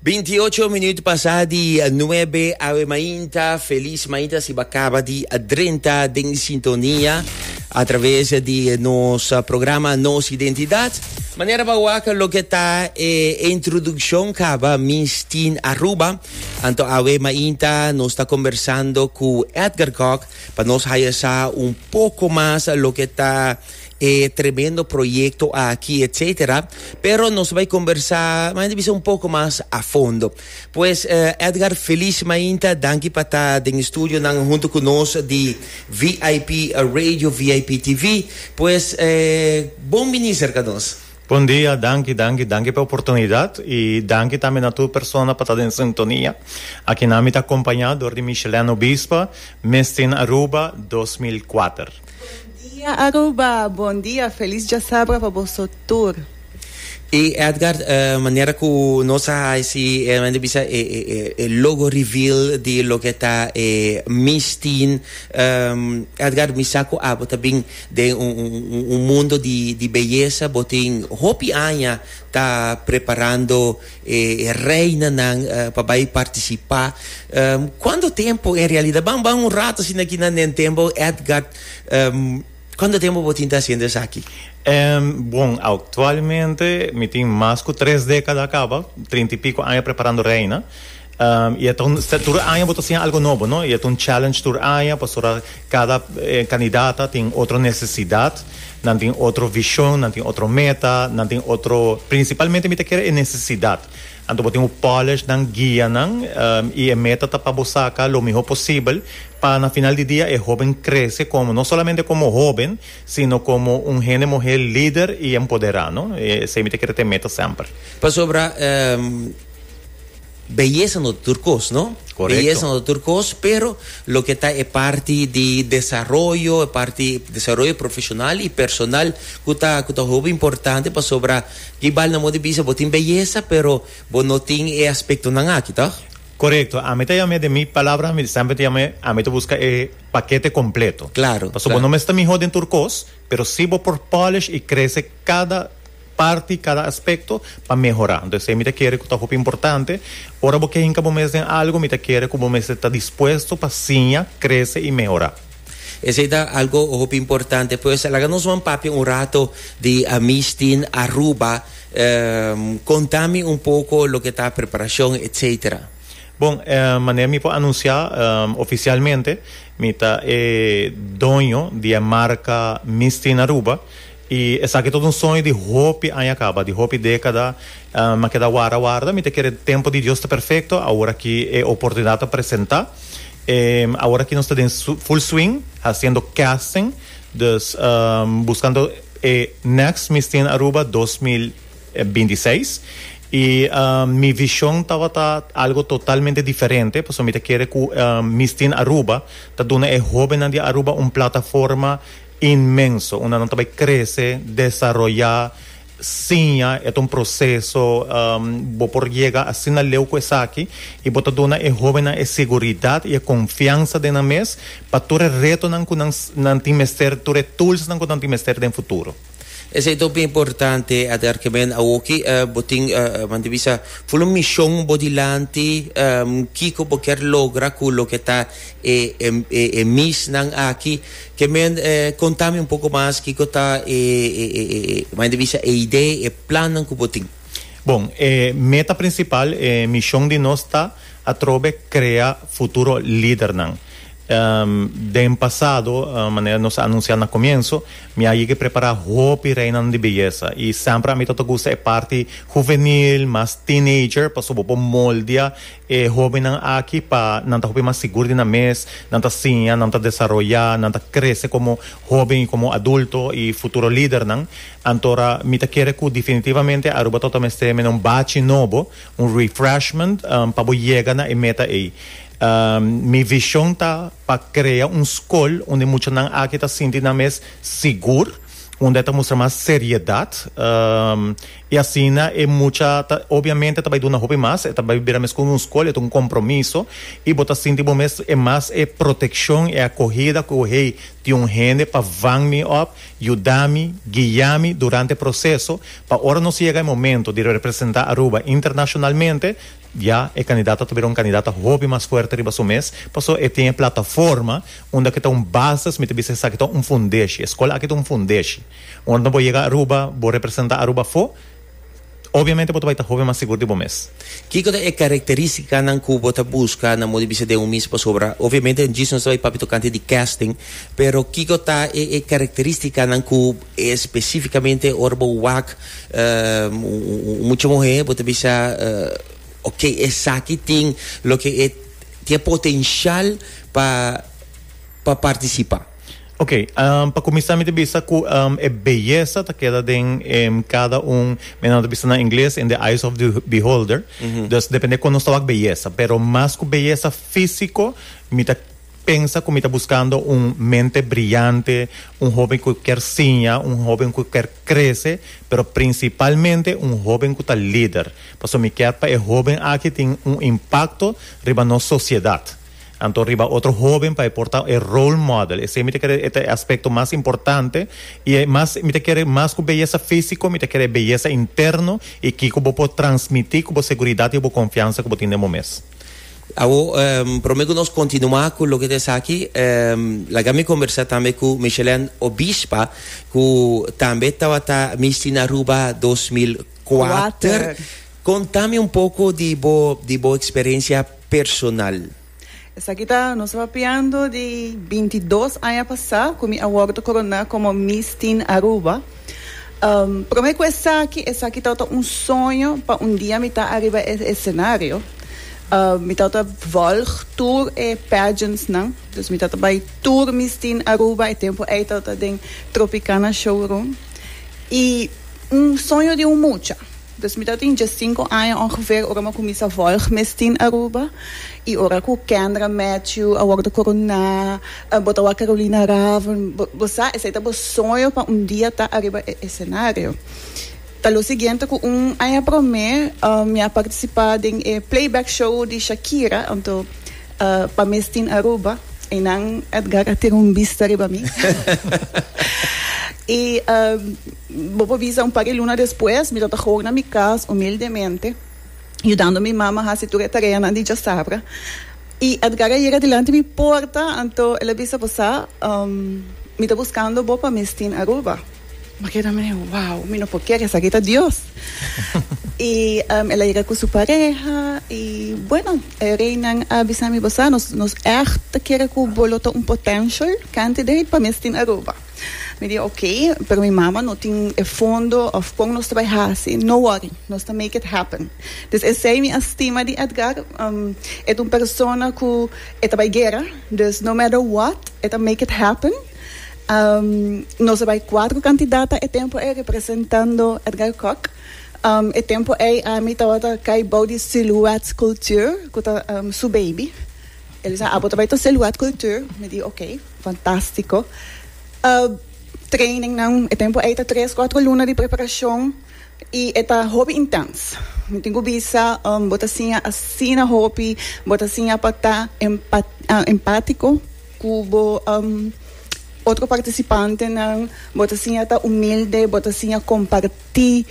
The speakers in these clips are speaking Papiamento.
28 minuut pasá di 9 awe mainta. Feliz mainta si bacaba di drenta den sintonia a través di nos programa Nos Identidad. Manera pa waka lo que ta e eh, introducción caba Mistin Aruba. Anto awe mainta nos está conversando cu Edgar Kok pa nos haya sa un poco más lo que ta e tremendo proyecto aki etcetera, pero nos bay conversa maynta bisa un poco mas a fondo. Pues eh, Edgar feliz maynta, danki pa ta den e studio nan hunto cu nos di VIP Radio, VIP TV, pues eh, bon bini cerca nos. Bon dia, danki, danki, danki p'e oportunidad y danki tambe na tur persona pa ta den sintonia. Akinan mi ta acompaña door di Michelene Obispo, Miss Teen Aruba dos mil kuater. Bon dia Aruba, bon dia, felis djasabra pa boso tur. E Edgar e manera ku nos a hasi e mester bisa e e logo reveal di loke ta e Miss Teen Edgar mi sa ku abo ta bin den un un mundo di beyesa bo tin hopi aña ta preparando e reinanan pa bai partisipá kuantu tempu en realidad ban ban un rato asina aki na Nentembou Edgard kuantu tempu bo tin ta hasiendo esaki? Bon aktualmente mi tin mas ku tres dékada a kaba trinta i piko aña preparando reina. Y e ta un, tur aña bo ta siña algo nobo, no? Y e ta un challenge tur aña pasobra cada candidata tin otro necesidad, nan tin otro vision, nan tin otro meta, nan tin otro, principalmente mi ta kere e necesidad. Anto bo tin bo polish nan, guia nan, y e meta ta pa bo saca lo miho posibel pa na final di dia e hoben crece como, no solamente como hoben, sino como un hende muher lider y empodera, no? Esey mi ta kere ta e meta semper. Pasobra. Beyesa no ta tur kos no, beyesa no ta tur kos pero loke ta e parti di desaroyo, e parti desaroyo profeshonal i personal ku ta ku ta hopi importante pasobra kibal nan mos bisa bo tin beyesa pero bo no tin e aspektonan aki tòg? Korekto, ami ta yam'é den mi palabra ami sèmper ta yam'é ami ta buska e pakete kompleto. Pasobra bo no mester mihó den tur kos pero si bo por pòlish i krese kada. parti kada aspekto pa mehorá. Entonces esei mi ta kere ku ta hopi importante. Ora bo ke hinka bo mes den algu mi ta kere ku bo mester ta dispuesto pa siña, krese i mehorá. Esei ta algu hopi importante. Pues laga nos wòrdu papia un rato di Amistin Aruba. Konta mi un poko loke ta preparashon etsetera. Bon, manera mi por anunsiá ofisialmente mi ta e doño di e marka Mistin Aruba. I esaki ta un soño di hopi aña kaba, di hopi dekada, mi a keda warda warda, mi ta kere tempu di Dios ta perfekto, awor aki e oportunidat a presenta, e awor aki nos ta den full swing hasiendo casting, dus buskando e next Miss Teen Aruba dos mil binti i seis, i mi vishon tabata algo totalmente diferente, pasobra mi ta kere ku Miss Teen Aruba ta duna e hobennan di Aruba un plataforma. Inmenso. Una nan ta bai krese, desaroyá, siña. E ta un proseso. Bo por yega asina leu ku esaki i bo ta duna e hóbennan e seguridat i e konfiansa den nan mes pa tur e retonan ku nan nan tin mester, tur e toolsnan ku nan tin mester den futuro. Esei ta hopi importante, Adhar, ku men awoki bo tin, men ta bisa, ful un mishon bo dilanti. Kiko bo kier logra ku loke ta e e e misnan aki? Ke men eh konta mi un poko mas kiko ta e e e e e mai ta bisa e idee, e plannan ku bo tin? Bon, e meta prinsipal, e mishon di nos ta atrobe krea futuro lidernan. Den pasado, manera nos a anunsiá na komienso, mi a yega prepará hopi reinanan di beyesa i sèmper a mi tabata gusta e parti huvenil, mas teenager, pasobra bo por moldia E hóbennan aki pa nan ta hopi mas sigur di nan mes, nan ta siña, nan ta desaroyá, nan ta krese komo hóben i komo adulto i futuro lidernan. Anto ra mi ta kere ku definitivamente Aruba tabata mester mene un bachi nobo, un refreshment, pa bo yega na e meta ei. Mi vishon ta pa krea un skol unda muchanan aki ta sinti nan mes sigur, unda e ta mustra mas seriedat. I asina e mucha ta obiamente ta bai duna hopi mas, e ta bai bira mes ku un skol, e ta un kompromiso, i bo ta sinti bo mes e mas e protekshon, e akohida ku hey tin un hende pa vang mi op, yuda mi, guia mi durante e proseso, pa ora nos yega e momento di representá Aruba internashonalmente, ya e kandidata ta bira un kandidata hopi mas fuerte riba su mes, pasobra e tin e plataforma unda ke ta un bases, mi ta bisa esaki ta un fundeshi, e skol aki ta un fundeshi. Ora bo yega Aruba, bo representa Aruba afo, obviamente bo ta bai ta hopi mas sigur di bo mes. Kiko ta e karakteristicanan cu bo ta busca na modo di bisa den un mis? Pasobra obviamente djis nos ta bai papia tocante di casting, pero kiko ta e e karakteristicanan cu especificamente ora bo wak un mucha muhe bo ta bisa ok esaki tin loke tin e potencial pa pa participa? Ok, pa kuminsá mi ta bisa ku e beyesa ta keda den kada un, men nan ta bisa na ingles, in the eyes of the beholder. Dus depende kon nos ta wak beyesa. Pero mas ku beyesa físiko, mi ta pensa ku mi ta buskando un mente briante, un hóben ku kier siña, un hóben ku kier krese, pero prinsipalmente un hóben ku ta lider. Pasobra mi kier pa e hóben aki tin un impakto riba nos sosiedat. Anto riba otro hoben pa e por ta e role model. Esei mi ta kere e ta e aspecto mas importante y e mas mi ta kere mas cu beyesa fisico mi ta kere e beyesa interno y kico bo por transmiti cu bo seguridad y bo confiansa cu bo tin den bo mes. Awo prome cu nos continua cu loke ta esaki laga mi conversa tambe cu Michelène Obispa cu tambe tabata Miss Teen Aruba dos mil kuater. Kuater. Contami un poco di bo di bo experiencia personal. Esaki ta nos papiando di binti dos aña pasá ku mi a wòrdu koroná komo Miss Teen Aruba. Promé ku esaki, esaki tabata un soño pa un dia mi ta ariba e esenario. Mi tabata vòlg tur e pageantsnan, dus mi tabata bai tur Miss Teen Aruba, e tempu ei tabata den Tropicana Showroom. I un soño di un mucha. Dos mi ta tin diescinco aña ongeveer ora mi a cuminsa volg mes tin Aruba. Y ora cu Kendra Matthew a wordo coroná, bo ta wak Carolina Raven, bo sa, esey ta bo soño pa un dia ta ariba e escenario. Ta lo siguiente cu un aña prome mi a participa den e playback show di Shakira, anto pa mes tin Aruba, eynan Edgar a tira un bista riba mi. Y. Bo por bisa, un par di luna despues, mi tata hoor na mi cas, humildemente, yudando mi mama haci tur e tareanan di djasabra. I Edgar a yega dilanti mi porta, anto el a bisa, Bo sa, mi ta buscando bo pa Mistin Aruba. Mi a keda mi, Wow, mi no por kere, esaki ta Dios! I el a yega cu su pareha, i bueno, e reinan a bisa mi, Bo sa, nos, nos echt ta kere cu bo lo ta un potential candidate pa Mistin Aruba. Mi di ok, pero mi mama no tin e fondo of con nos ta bay haci, no worry, nos ta make it happen. Dus esey mi a stima di Edgar, um, e ta un persona cu e ta bay guera, dus no matter what, e ta make it happen. Um, nos a bay cuatro cantidata e tempo ey representando Edgar Kok. Um, e tempo ey ami tabata cay bou di Silhouette Culture, cu ta um, su baby. Elisa, abo ta bay ta Silhouette Culture? Mi di ok. Fantastico. Training nan e tempo ei ta tres cuatro luna di preparacion y e ta hopi intens. Mi tin cu bisa bo ta siña asina hopi, bo ta siña pa ta empatico cu bo otro participantenan, bo ta siña ta humilde, bo ta siña comparti.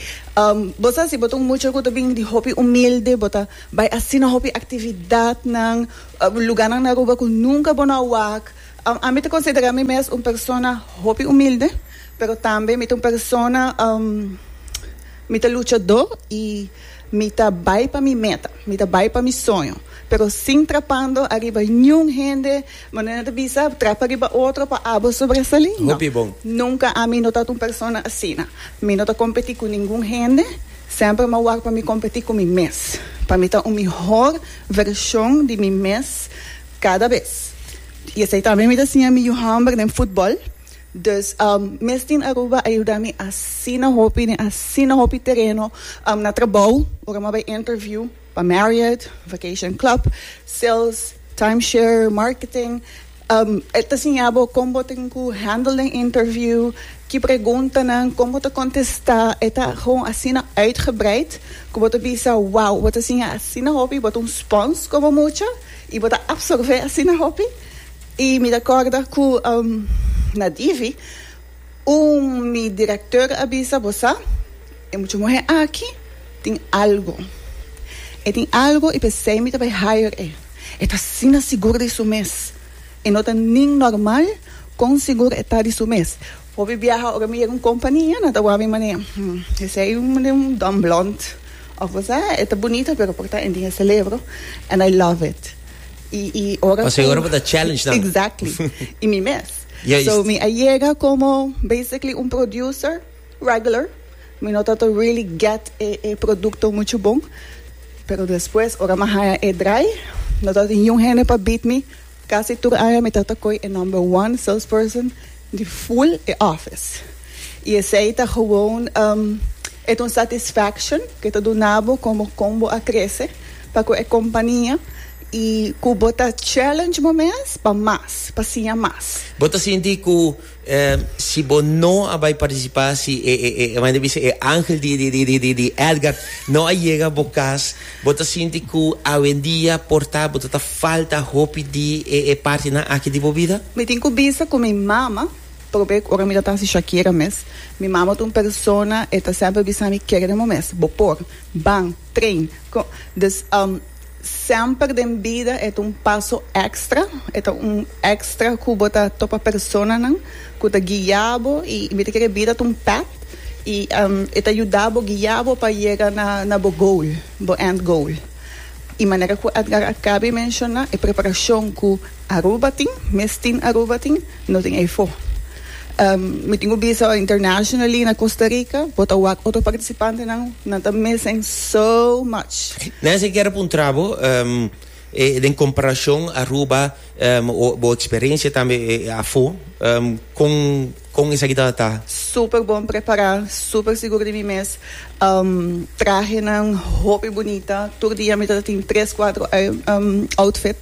Bo sa si bo ta un mucha cu ta bini di hopi humilde, bo ta bay asina hopi actividadnan Luganan na Aruba cu nunca bo no a wak. Ami ta considera mi mes un persona hopi humilde, pero tambe mi ta un persona, mi ta luchado y mi ta bay pa mi meta, mi ta bay pa mi soño, pero sin trapando ariba niun hende, manera nan ta bisa, trapa riba otro pa abo sobresali, no, nunca ami no ta un persona asina. Mi no ta competi cu ningun hende. Semper m'ha wak pa mi kompetí ku mi mes, pa mi ta un mihor vershon di mi mes kada bes. I esei tambe mi ta siña mi yu hòmber den futbòl. Dus, mes tin Aruba a yuda mi asina hopi den asina hopi tereno, na trabou, ora m'ha bai interview, Pa Marriott, Vacation Club, Sales, Timeshare, Marketing, e ta siña bo con bo tin cu handle den interview, ki preguntanan, con bo ta contesta. E ta gewoon asina uitgebreid cu bo ta bisa, wow, bo ta siña asina hopi, bo ta un sponge como mucha y bo ta absorbe asina hopi. Y mi ta corda cu na Divi Un mi director a bisa bo sa e mucha muhe aki tin algo e tin algo y pesey mi ta bay hire e e ta asina sigur di su mes e no ta nin normal con sigur e ta di su mes hopi biaha ora mi yega un compania nan ta wak mi mane hmm esey mane un don blond of bo sa e ta bunita pero por ta en tin e celebro and I love it y y ora cu exactly y mi mes. So mi a yega como basically un producer regular, mi no tato really get e e producto mucho bon, pero despues ora mi a haya e draai no ta niun hende pa beat mi, casi tur aña mi tato coi e number one salesperson di full e office y esey ta gewoon um e ta un satisfaction que ta duna bo como con bo a crece pa cu e compania Y cu bo ta challenge bo mes pa mas, pa siña mas. Bo ta sinti cu si bo no a bay participa si e manda bisa e angel di Edgar no a yega bo cas, bo ta sinti cu awendia por ta bo ta falta hopi di e partinan aki di bo bida? Mi tin cu bisa cu mi mama, probe ora mi ta ta hasi Shakira mes, mi mama ta un persona e ta semper bisami kere den bo mes, bo por, ban, train, con, dus. Semper den bida e ta un paso extra, e ta un extra cu bo ta topa personanan cu ta guia bo y mi ta kere bida ta un pad y e ta yuda bo, guia bo pa yega na bo goal, bo end goal. Y manera cu Edgar a cabe menciona e preparacion cu Aruba tin, mes tin Aruba tin. No tin efo. Mi tin cu bisa awa internationally na Costa Rica bo ta wak otro participantenan, nan ta missing so much. Nancy kier a puntra bo den comparacion Aruba o bo experiencia tambe afo con con esaki tabata? Super bon prepara, super sigur di mi mes, trahenan hopi bunita, tur dia mi ta tin tres cuatro outfit.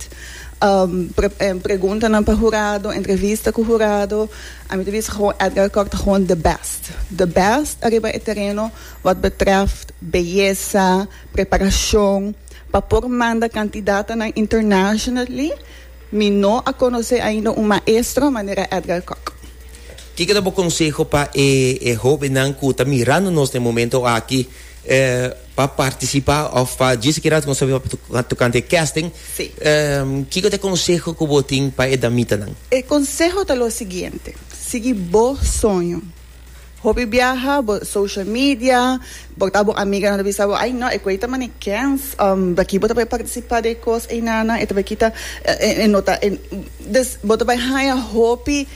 preguntanan pa hurado, entrevista ku hurado, a mi ta bisa Gewoon Edgar Kok ta gewoon de bèst, de bèst ariba e tereno wòt betrèft beyesa, preparashon pa por manda kantidadnan internasjonally, mi no a konosé ainda un maestro manera Edgar Kok. Kiko ta bo konseho pa e hobennan ku ta mirando nos na e momento aki? Pa participa of pa djis sikiera con sabi tocante e casting Sí. Kico ta e conseho cu bo tin pa e damitanan? E conseho ta lo siguiente, sigui bo soño. Hopi biaha bo social media, bo ta bo amiganan ta bisa bo, ay no, e cu ay ta mane kens, aki bo ta bay participa de e cos eynanan, e ta bay kita, e no ta, e, dus bo ta bay haya hopi.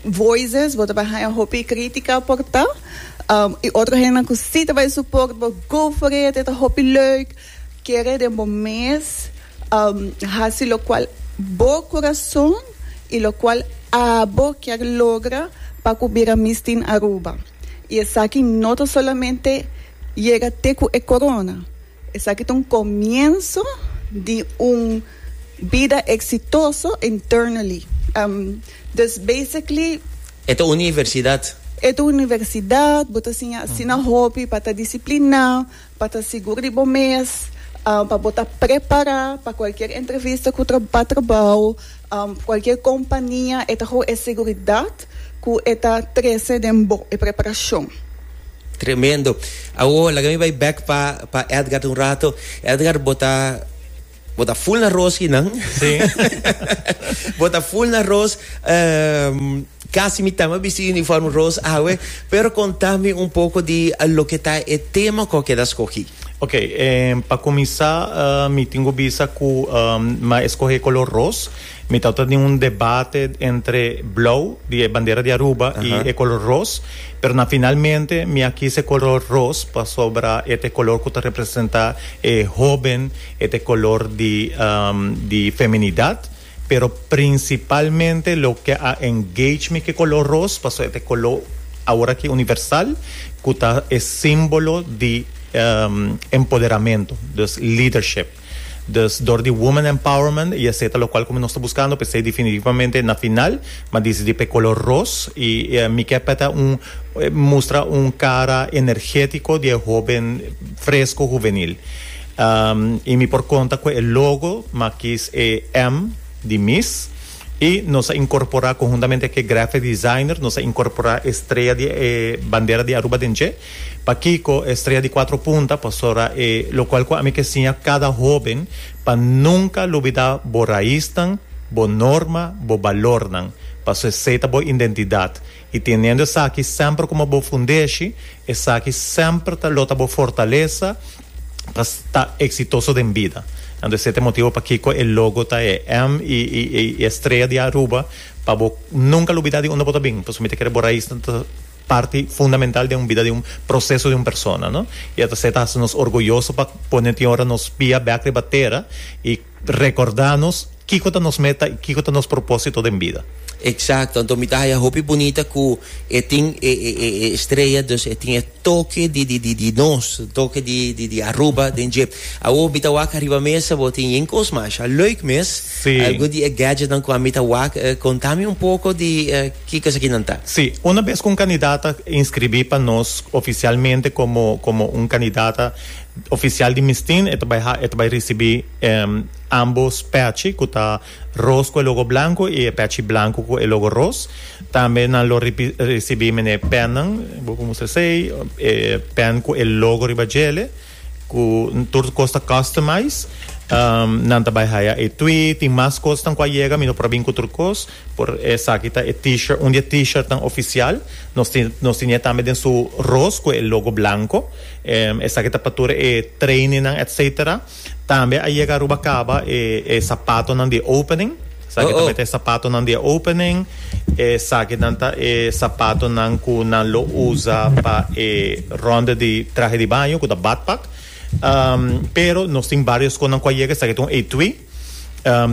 Voices, bo ta bai haña hopi crítica por ta. Y otro hendenan cu si ta bai support bo, go for it, e ta hopi leuk. Kere den bo mes haci locual bo corazon y locual abo kier logra pa cu bira Miss Teen Aruba. Y esaki no ta solamente yega te cu e corona. Esaki ta un comienso di un bida exitoso internally. Dus basically. E ta universidad. E ta universidad, bo ta siña asina hopi pa ta discipliná, pa ta sigur di bo mes, pa bo ta prepará pa cualkier entrevista cu pa trabao, cualkier compania e ta hou e seguridad. Ku e ta trese den bo e preparashon. Tremendo. Awo laga mi bai bek pa pa Edgard un rato. Edgard bo ta bo ta full na roos kinan. Sí. bo ta full na roos. Um, casi mi tama bisti uniform roos awe. Pero contami un poco di uh, lo que ta e tema co queda escogi. Ok, eh, pa comisá uh, mi tingo bisa cu um, ma escoge color roos. Mi tata ta tin un debate entre blou, di e bandera di Aruba, i e kolor ros. Pero na finalmente mi a kis e kolor ros pasobra e ta e kolor ku ta representá e hóben, e ta e kolor di di feminidat. Pero prinsipalmente loke a engage mi ku e kolor ros pasobra e ta e kolor awor aki universal ku ta e símbolo di empoderamentu, dus leadership. Dus dor di woman empowerment y esey ta locual como nos ta buscando pa esey definitivamente na final ma disidí pa e color ros y mi kier pa e ta un mustra un cara energetico di e hoben fresco juvenil y mi por conta cu e logo ma akis e M di miss y nos a incorpora conhuntamente cu e graphic designer nos a incorpora e strea di e bandera di Aruba den dje. Pakico e Estrella di Cuatro Punta pasora e locual cu ami ke siña cada hoben pa nunca lubida bo raisnan, bo norma, bo balornan, paso esei ta bo indentidad y teniendo esaki semper como bo fundeshi, esaki semper ta lo ta bo fortalesa pa sta exitoso den bida. Anto esei ta e motibo pakico e logo ta e M y y y Estrella di Aruba pa bo nunca lubida di unda bo ta bin, paso mi ta kere bo raisnan ta. parti fundamental den un bida di un proseso di un persona no y a ta ser ta haci nos orgulloso pa pone tin ora nos pia bek riba tera y recorda nos kico ta nos meta y kico ta nos proposito den bida. Exacto, anto mi ta haya hopi bunita cu e tin e e e e estrella dus e tin e toke di di di di nos, toke di di di Aruba den dje. Awor mi ta wak ariba mesa bo tin yen cos masha leuk mes, Si. algun di e gadgetnan cu ami ta wak, eh, conta mi un poco di eh, Ki kos aki nan ta? Sí, una bes ku un kandidat ta inskribí pa nos ofisialmente komo komo un kandidat ofisial di Mistin, e ta bai ha e ta bai risibí ámbos pèchi ku ta ros ku e logo blanku i e pèchi blanku ku e logo ros. Tambe nan lo risibí mené pènnan, bo por mustra esei, e pèn ku e logo riba djel'e. Ku tur kos ta customize. Nan ta bai haya e twi. Tin mas kosnan ku a yega. Mi no por a bin ku tur kos. Por esaki ta e T-shirt. Un di e T-shirtnan ofisial. Nos tin nos tin e tambe den su ros ku e logo blanko. Esaki ta pa tur e trainingnan etcetera. Tambe a yega Aruba Caba e sapatonan di opening. Esaki ta mete e sapatonan di e opening. Esakinan ta e sapatonan ku nan lo usa pa e rònde di trahe di baño, ku ta badpak. Pero nos tin barios konan ku a yega. Esaki ta un etui.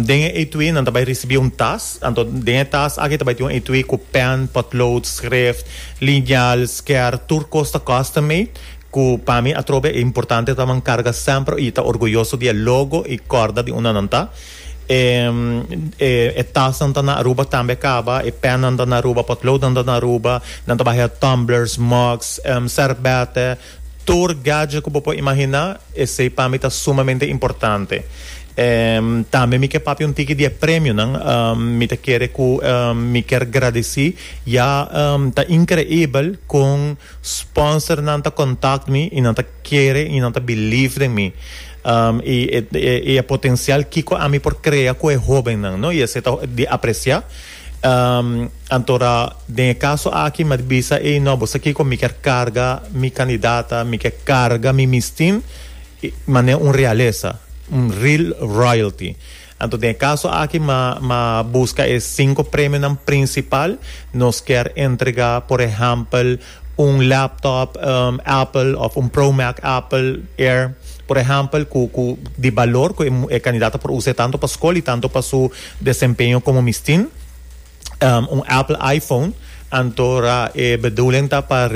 Den e etui nan ta bai risibí un tas. Anto den e tas aki ta bai tin un etui ku pèn, pòtlood, skrèft, liñal, skèr, tur kos ta custom made. Ku pa mi atrobe e importante ta man karga semper i ta orguyoso di e logo i kòrda di unda nan ta. E tasnan ta na Aruba tambe kaba, e pènnan ta na Aruba, potloodnan ta na Aruba, nan ta bahia tumblers, mugs, sèrbèt'e, tur gadget ku bo por imaginá, esei pa mi ta sumamente importante. Tambe mi ke papia un tiki di e premionan, mi ta kere ku mi ker gradesí ya ta inkreibel kon sponsornan ta kontakt mi i nan ta. kere y nan ta believe den mi y e e potencial kico ami por crea cu e hoben nan no y esey ta di aprecia antora den e caso aki mi a bisa ey no bo sa kico mi kier carga mi candidata mi kier carga mi mistin mane un realesa un real royalty. Anto den e kaso aki ma ma buska e sinku premionan prinsipal, nos kier entregá por ehèmpel un laptop Apple òf un Pro Mac Apple Air por ehèmpel ku ku di balor ku e e kandidato por usa e tantu pa skol i tantu pa su desempeño komo mistin. un Apple iPhone antora e bedoeling ta pa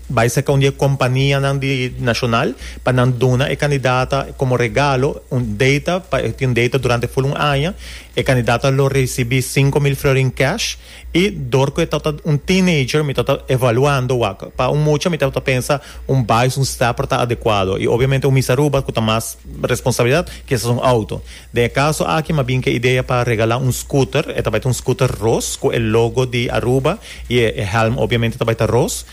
bai cerca un di e companianan di nacional pa nan duna e candidata como regalo un data pa e tin data durante full un aña e candidata lo recibi cinco mil florin cash y door cu e tabata un teenager mi tabata evaluando wak pa un mucha mi tabata pensa un bais un stepper ta adecuado y obviamente un Miss Aruba cu ta mas responsabilidad kisas un auto. Den e kaso aki m'a bin ku e idea pa regalá un scooter, e ta bai ta un scooter ros ku e logo di Aruba i e e hèlm obviamente ta bai ta ros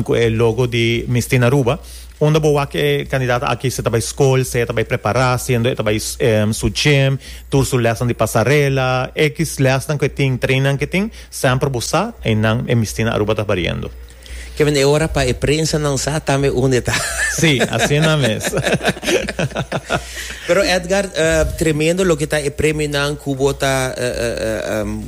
ku e logo di Mi Stina Aruba. Unda bo wak e kandidat aki si ta bai skol, si e ta bai prepará, siendo e ta bai su gym, tur su lèsnan di pasarela, ekis lèsnan ku e tin, treinnan ku e tin, semper bo sa einan e Mi Stina Aruba ta bariendo. Kevin, e ora pa e prensanan sa tambe unda e ta. Sí, asina mes. Pero Edgar, tremendo loke ta e premionan ku bo ta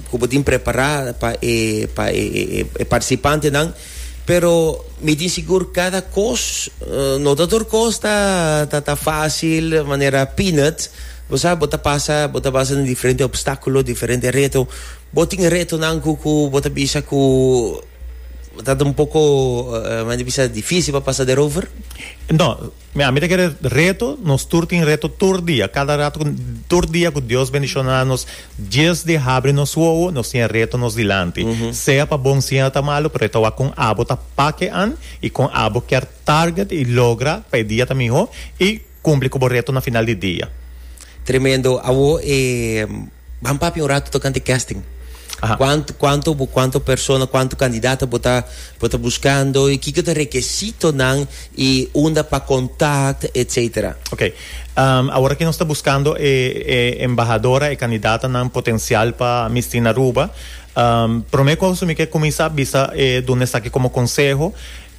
ku bo tin prepará pa e pa e e partisipantenan, pero mi tin sigur kada kos no ta tur kos ta ta ta fásil manera peanut, bo sa bo ta pasa bo ta pasa den diferente opstákulo, diferente reto. Bo tin retonan ku ku bo ta bisa ku Ta un poco men ta bisa difícil pa pasa derover? No, ami ta kere reto, nos tur tin reto tur dia, cada rato tur dia cu Dios bendiciona nos dies di habri nos wowo nos tin e reto nos dilanti sea pa bon sea ta malo pero e ta wak con abo ta pakean y con abo kier target y logra pa e dia ta miho y Cumpli cu bo reto na final di dia. Tremendo, awo e ban papia un rato tocante casting. Aha. Cuanto, cuanto, bo- cuanto persona, cuanto candidato bo ta, bo ta buscando y kiko ta requisitonan y unda pa contact, etcetera. Ok, ehm, awor aki nos ta buscando e, e embahadora, e candidatanan potencial pa Miss Teen Aruba. Ehm, prome cosa mi ke cuminsa bisa e duna esaki como conseho,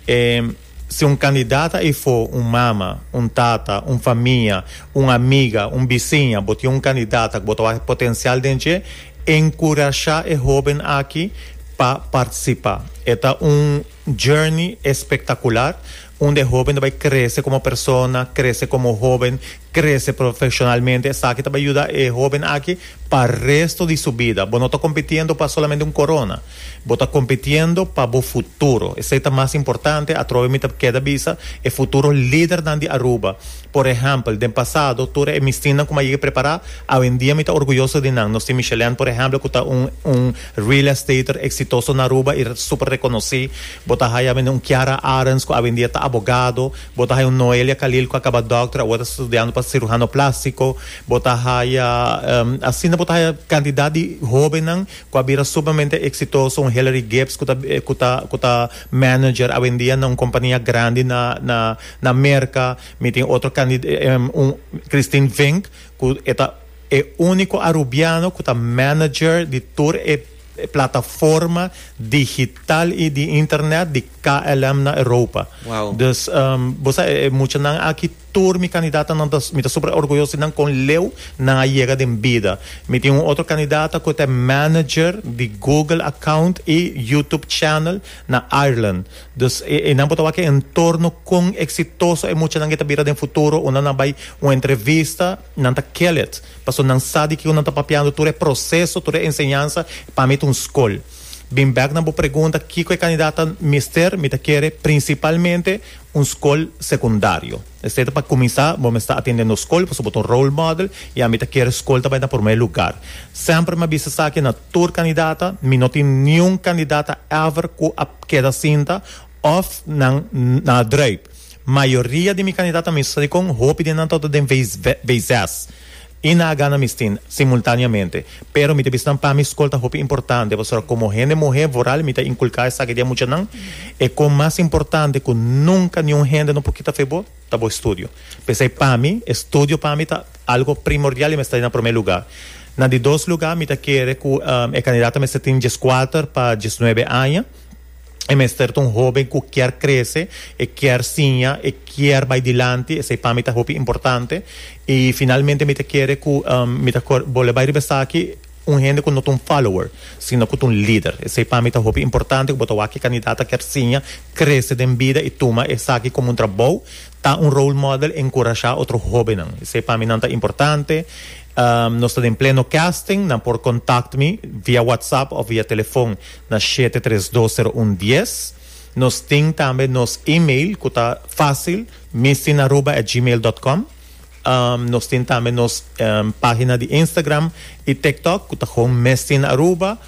ehm, Si un kandidat a efo un mama, un tata, un famia, un amiga, un bisiña, bo tin un kandidat ku bo ta wak e potensial den dje, enkurashá e hóben aki pa partisipá. E ta un journey espektakular unda e hóben ta bai krese komo persona, krese komo hóben, Krese profeshonalmente, esaki ta bai yuda e hóben aki pa resto di su bida. Bo no ta kompitiendo pa solamente un korona. Bo ta kompitiendo pa bo futuro. Esei ta mas importante. Atrobe mi ta keda bisa e futuro lidernan di Aruba. Por ehèmpel, den pasado, tur e mistinnan ku mi a yega prepará, awendia mi ta orguyoso di nan. Nos tin Michelaine, por ehèmpel, ku ta un un real estater eksitoso na Aruba i super rekonosí. Bo ta haya mende un Kiara Arends ku awendia ta abogado. Bo ta haya un Noelia Khalil cu a caba doctor, awo ta studiando pa cirujano plastico. Bo ta haya, asina bo ta haya cantidad di hobennan cu a bira sumamente exitoso, un Hillary Gibbs cu ta cu ta cu ta manager awendia na un compania grandi na na na Merca. Mi tin otro candi un Christine Vink cu e ta e unico Arubiano cu ta manager di tur e. e plataforma digital y di internet di KLM na Europa. Wow. Dus um, bo sa e, e muchanan aki tur mi candidatanan ta, mi ta super orgulloso di nan con leu nan a yega den bida. Mi tin un otro candidata cu ta manager di Google account y YouTube channel na Ireland. Dus e, e nan por ta wak e entorno con exitoso e muchanan e ta bira den futuro unda nan bay un entrevista Nan ta kellet, paso nan sa di kico nan ta papiando, tur e proceso, tur e enseñansa, pa mi ta un scol. Bin bek na bo pregunta, kico e candidat ta mester, mi ta kere principalmente un scol secundario. Esei ta pa cuminsa, bo mester atendendo scol, paso bo ta un role model, y ami ta kere scol ta bay na prome lugar. Semper mi a bisa esaki na tur candidata, mi no tin niun candidata ever cu a keda sinta of nan na a drijf. Mayoria di mi kandidat ami sa di kon hopi di nan tabata den veizes i na a gana mistin simultaneamente. Pero mi ta bisa nan pa mi skol ta hopi importante pasobra komo hende muhé voral mi ta inkulká esaki di e muchanan e kon mas importante ku nunka niun hende no por kita fe bo ta bo estudio. P'esei pa mi e studio pa mi ta algo primordial i mester na promé lugá. Na di dos lugá mi ta kere ku e kandidat ta mester tin dieskuater pa diesnuebe aña. E mester ta un hóben ku kier krese, e kier siña, e kier bai dilanti, esei pa mi ta hopi importante. I finalmente mi ta kere ku mi ta bole bai riba esaki, un hende ku no ta un follower, sino ku ta un lider. Esei pa mi ta hopi importante, ku bo ta wak ki kandidat a kier siña, krese den bida i tuma esaki komo un trabou, ta un role model, enkurashá otro hóbennan. Esei pa mi nan ta importante. Nos ta den pleno casting, nan por kòntakt mi via whatsapp òf via telefòn. Na shete tres dos sero un dies. Nos tin tambe nos email cu ta facil mistinaruba at gmail dot com. Nos tin tambe nos pagina di Instagram y TikTok cu ta gewoon mistinaruba.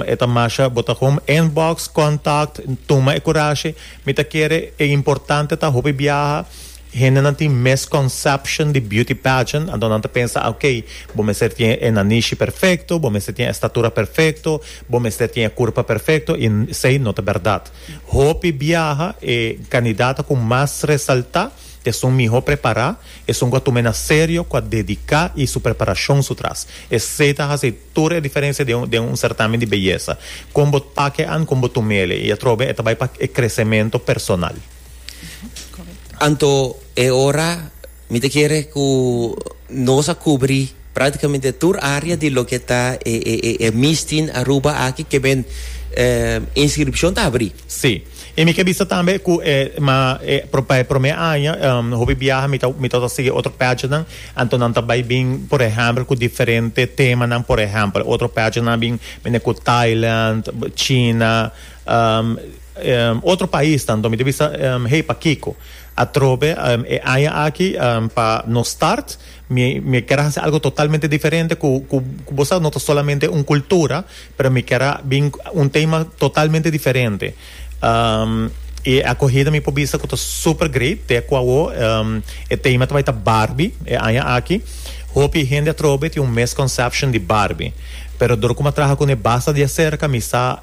E ta masha bo ta gewoon inbox, contact, tuma e curashi. Mi ta kere e importante ta hopi biaha. Hendenan tin misconception di beauty pageant, anto nan ta pensa ok, bo mester tin e nanishi perfecto, bo mester tin e estatura perfecto, bo mester tin e curpa perfecto y esey no ta berdad. Hopi biaha e candidata cu mas resalta esun miho prepara, esun cu a tuma e na serio, cu a dedica y su preparacion su tras. Esey ta haci tur e diferencia den un certamen di beyesa. Con bo take an con bo tumele y atrobe e ta bay pa e crecemento personal. Anto e ora mi ta kere ku nos a kubri praktikamente tur área di loke ta e e e e Mistin Aruba aki kemen inskripshon ta abri. Sí. I mi ke bisa tambe ku e ma e pa e promé aña hopi biaha mi ta mi ta wòrdu sigui otro pègenan anto nan ta bai bin por ehèmpel ku diferente temanan por ehèmpel otro pègenan a bin mende ku Thailand, China, Otro pais tambe mi ta bisa hei pakico atrobe e aña aki pa nos start mi mi kier a haci algo totalmente diferente cu cu cu bo sa no ta solamente un cultura pero mi kier a bin un tema totalmente diferente y e acogida mi por bisa cu ta super great te cu awo e tema ta bai ta Barbie e aña aki hopi hende atrobe tin un misconception di Barbie pero dor cu mi a traha cune basta diacerca mi sa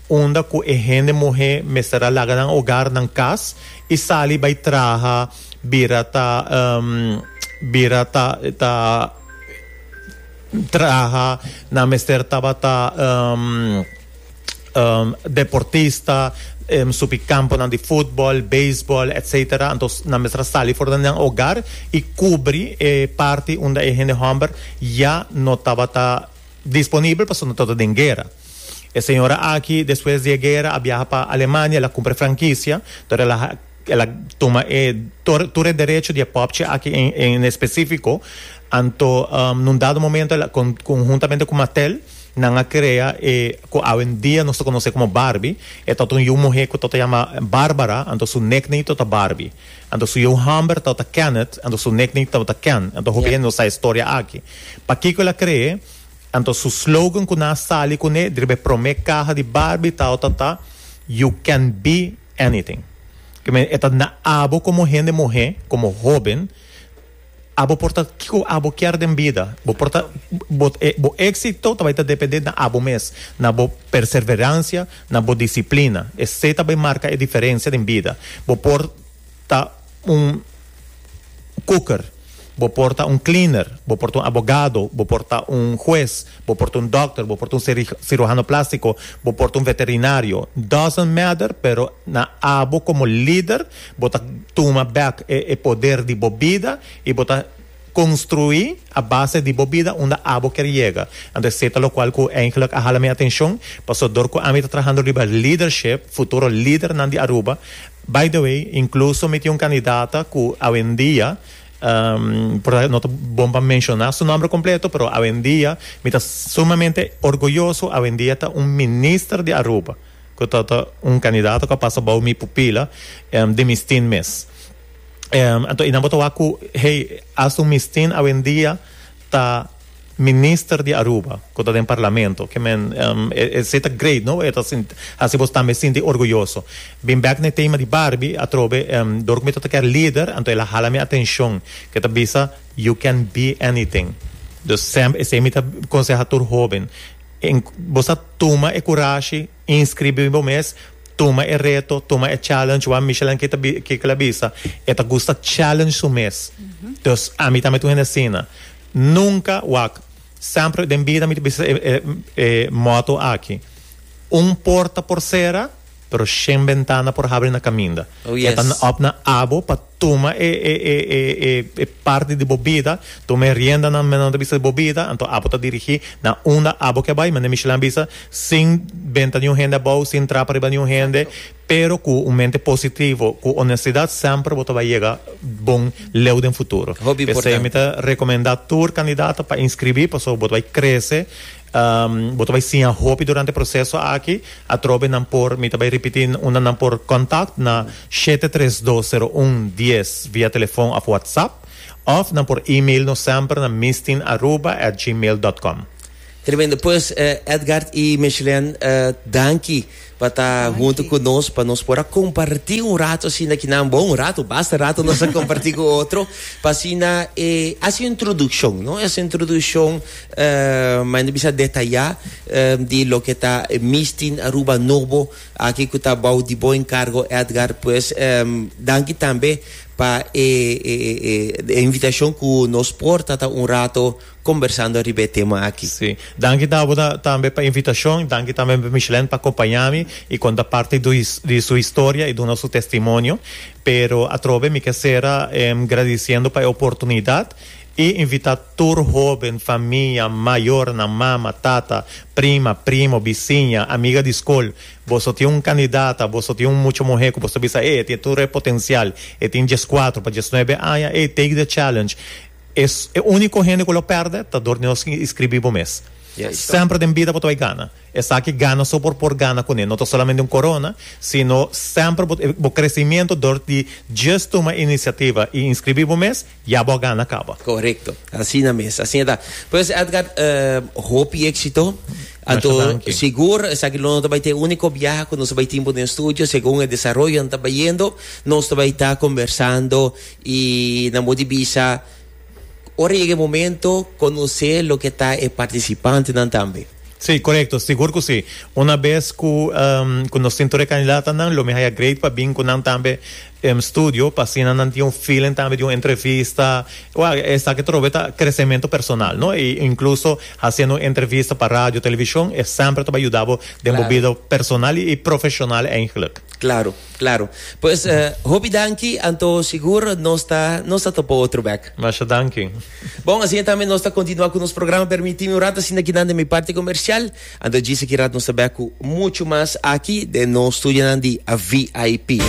unda cu e hende muhe mester a laga nan hogar, nan cas, y sali bay traha bira ta bira ta ta traha, nan mester tabata deportista, subi camponan di futbol, beisbol, etc. Antos nan mester a sali for den nan hogar y cubri e parti unda e hende homber ya no tabata disponibel pasobra no tabata den guera. E señora aki despues di e guera a biaha pa Alemania, el a cumpra e franquicia, dor el a el a tuma e tor tur e derecho di e popchi aki en en específico, anto um un dado momento el a con conjuntamente cu Mattel nan a crea e cu awendia nos ta conoce como Barbie, e ta un yiu muhe cu ta ta yama Barbara, anto su nickname ta ta Barbie, anto su yiu homber ta ta Kenneth, anto su nickname ta ta Ken, anto hopi hende no sa e historia aki. Pakico el a crea? Anto su slogan ku nan a sali kuné riba e promé kaha di Barbie tawata ta You can be anything. Ke men e ta na abo komo hende muhé, komo hóben, abo por ta kiko abo kier den bida. Bo por ta bo e bo éksito ta bai ta dependé na abo mes, na bo perserveransia, na bo disiplina. Esei ta bai marka e diferensia den bida. Bo por Ta un koker, bo por ta un cleaner, bo por ta un abogado, bo por ta un hues, bo por ta un dokter, bo por ta un cirujano plástiko, bo por ta un veterinario, doesn't matter, pero na abo komo lider bo ta tuma bèk e poder di bo bida i bo ta konstruí a base di bo bida unda abo ker yega. Anto esei ta lokual ku eingelik a hala mi atenshon, pasobra dor ku ami ta trahando riba lidership, futuro lidernan di Aruba, By the way, incluso mi tin un candidata cu awendia, por esaki no ta bon pa menciona su nomber completo, pero awendia mi ta sumamente orgulloso, awendia ta un minister di Aruba, cu ta ta un candidata cu a pasa bao mi pupila di Mistin mes. Anto y nan bo ta wak cu hey, asta un Mistin awendia ta. Minister di Aruba cu ta den Parlamento que men esey ta great no e ta haci bos tambe sinti orguyoso. Bin bek na e tema di Barbie atrobe dor cu mi ta ta kier lider anto el a hala mi atencion cu e ta bisa You can be anything dus semp esey mi ta conseha tur hoben bo sa tuma e curashi inscribi bo mes tuma e reto tuma e challenge wan Michelle Anke ta kiko el a bisa e ta gusta challenge su mes dus ami tambe ta un hende asina. Nunca wak. Semper den bida mi ta bisa e motto aki, Un porta por cera, pero shen bentana por habri na caminda. Oh, yes. E ta op na abo pa tuma e e parti di bo bida, tuma e riendanan medan ta bisa di bo bida, anto abo ta dirigi na unda abo ke bai. Manera Michelin a bisa, sin benta niun hende abou, sin trapa riba niun hende. Pero cu un mente positivo, cu honestidad semper bo ta bay yega bon leu den futuro. Hopi importante. P'esey mi ta recomenda tur candidato pa inscribi pasobra bo ta bay crece, bo ta bay siña hopi durante e proceso aki. Atrobe nan por, mi ta bay ripiti unda nan por contact na shete tres dos sero un dies via telefon of WhatsApp of nan por email nos semper na mistin aruba at gmail dot com. Tremendo pues Edgard y Mechelen danki pa ta hunto cu nos pa nos por a comparti un rato asina ki nan bon un rato basta rato nos a comparti cu otro pa asina e haci un introduccion no haci un introduccion manda bisa detaya di loke ta Mistin Aruba Nobo aki cu ta bao di bo encargo Edgard pues danki tambe pa e invitacion cu nos por ta ta un rato Kombersando riba e tema aki. Sí. Danki Dabo ta, tambe pa invitashon. Danki tambe pa Micheline pa akompañá mi i konta parti do his, di su historia i duna su testimonio. Pero atrobe mi ke sera em gradisiendo pa e oportunidat i invitá tur hóben, famia, mayornan, mama, tata, prima, primo, bisiña, amiga di skol. Boso tin un kandidata, boso tin un mucha muhé ku boso ta bisa, ey e tin tur e potensial, e tin dieskuatro pa diesnuebe aña, ey take the challenge. Es e unico hende cu lo perde ta dor di nos tin iscribi bo mes. Semper den bida bo ta bay gana. Esaki gana so por por gana cune. No ta solamente un corona, sino semper bo ta bo crecimiento dor di djes tuma iniciativa y inscribi bo mes, ya bo a gana caba. Correcto. Asina mes. Asina ta. Pues Edgar, hopi exito. Anto sigur esaki lo no ta bay ta e unico biaha cu nos ta bay tin bo den studio. Segun e desaroyonan ta bayendo, nos ta bay ta conversando. Y nan bo di bisa, ora yega e momento, conoce loke ta e participantenan tambe. Sí, correcto. Sigur cu sí. Una bes cu cu nos tin tur e candidatanan, lo mi haya great pa bin cu nan tambe den studio, pa asina nan tin un feeling tambe di un entrevista. Wak, esaki ta robé ta crecemento personal, no? Y incluso haciendo un entrevista pa radio, television, e semper ta bay yuda bo den bo Claro. bida personal y profesional, eindelijk. Claro. Claro. Pues eh, hopi danki, anto sigur nos ta, nos ta topo otro bek. Masha danki. Bon, asina tambe nos ta continua cu nos programa. Permitimi un rato asina kinan den mi parti comercial. Anto djis aki rat nos ta bek cu mucho mas aki den nos studionan di VIP.